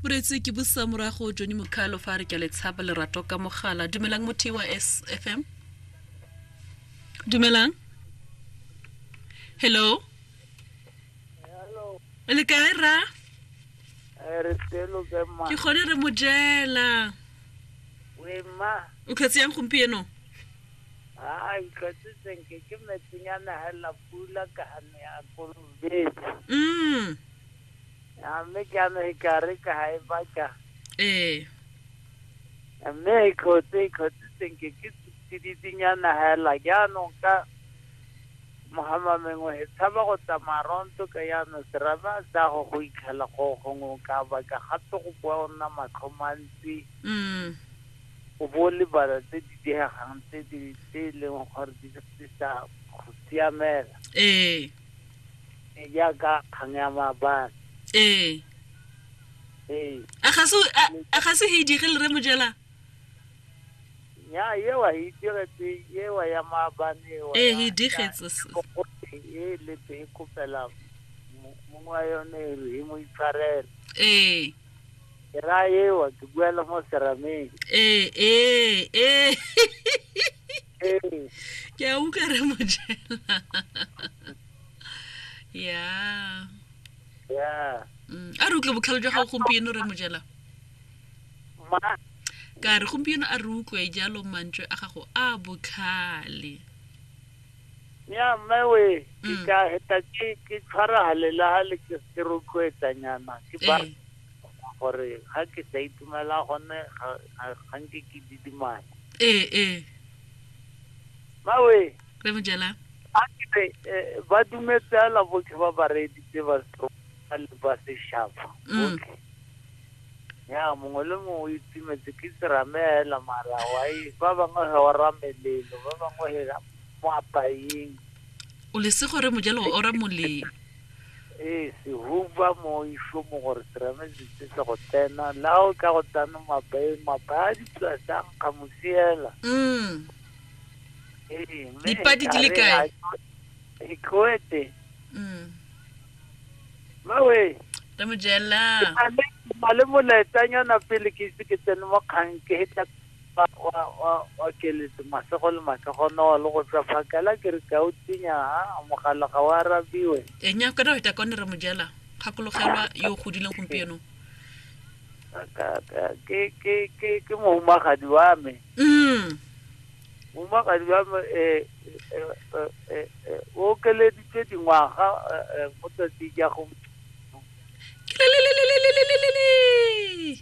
moretse ke bosa morago jone mokgalo fa re ke letshaba lerato ka mogala dumelang motho wa s f m dumelang hello le kae ra eh, ke kgone re mojela o tlhetse yang gompieno mm A mme ke amege ka re ka ga e baka ee mme e kgotse e kgotse senke ke tsiditsinyana hela jaanong ka mogama mengwe e tshaba go tsamaya ronto ka jaanong seraba sa go go ikgela go gongwe o ka baka gape go bua o nna matlho mantsi mm o bo o lebala tse di diegang tse di tse e leng gore di di sa go siamela ee Ee, jaaka kgang ya maabane ee ee a ga se a- a ga se he dire le re mojela ya ewa e diretse ewa ya maabane ewa ee ya- he digetse s- Kokote e letse e kopela mo- mong wa yone e re e mo itshwarele ee ke ra ewa ke buela mo serameng ee ee ee Ee. ke a utlwa re mojela ya ya Mm, a re utlwe botlhalo jwa gago gompieno re mojela ma ka re gompieno a re utlwe jalo mantswe a gago a botlhale ya mme we ke Mm. ka heta ke ke tshwara halelahale ke ke rotloetsanyana ke ba Ee. gore ga ke sa itumela gone ga nke ke didimala ee ee mawe re mo jela a ke eh, ba dumetse ala botlhe ba ba reeditse ba le ba seshaba mm. botlhe ya mongwe le mongwe o itumetse ke serame hela mara wa e, ba bangwe he wa ramelelo ba bangwe he moapaeng o lesego re mojelo o ra moleng ee sehuba mo iso mo gore terame ditse se go tsena la o ka go tsana mabae mabaya di tswa jang ka mosiela mm. ee mme Dipadi di le ekare kae? ga- ikoete mm. mawe re mo jela na le molaetsanyana pele ke ise ke tsene mo kgang ke hetla Fa wa, wa, wa keletse masego le masego no le go tswa phakela ke re ka o tsenya ha mogala ga o arabiwe. E nya ka daweta ka o ne re mojela gakologelwa yo o godileng gompieno. Ka, ka, ke, ke, ke, ke mohumagadi wa me. Mm. Mohumagadi wa me e, e, e, e, e, o okeleditswe dingwaga e, e, mo tsatsing ya go. Kilelelelelelelelele.